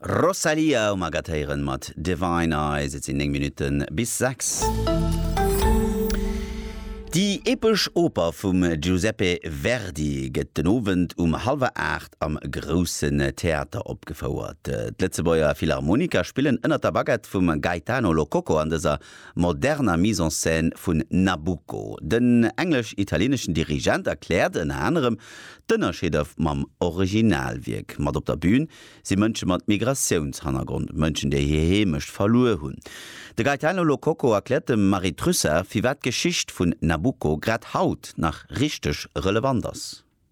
Rosalía um Agathe héieren mat Divine Eyes. Et sinn 9 Minutten bis 6. Déi epesch Oper vum Giuseppe Verdi gëtt den Owend um hallwer 8 am Groussen Theater opgefouert. D'Lëtzebuerger Philharmoniker spillen ënnert der Baguette vum Gaetano Lococo an dëser moderner Mise en scène vun Nabucco. Den englesch-italieneschen Dirigent erkläert ënner anerem d'Ënnerscheeder mam Originalwierk. Mat op der Bün si Mënsche mat Migratiounshannergrond, Mënschen, déi hir Heemecht verluer hunn. De Gaetano Lo Cocco erkläert dem Marie Trussart, firwat d'Geschicht vun Nabucco grad haut nach richteg relevant ass.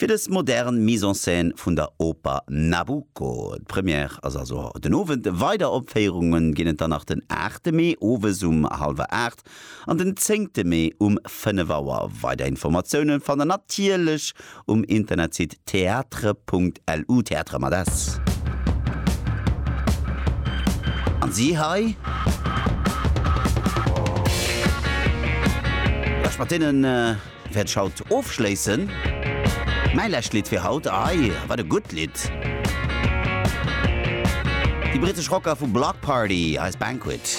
Fir dës modern Mise en scène vun der Oper Nabucco, d'Première ass also den Owend, weider Opféierunge ginn et dann nach den aachte Mee owes um hallwer aacht an den zéngte Mee um fënnef Auer. Weider Informatioune fannt der natierlech um Internetsite theatre.lu, Theatre mat s. An si hei, lech mat deenen wäert ech haut ofschléissen. Mäi lescht Lidd fir haut, ei, wat e gutt Lidd! Déi britesch Rocker vu Bloc Party, eis Banquet.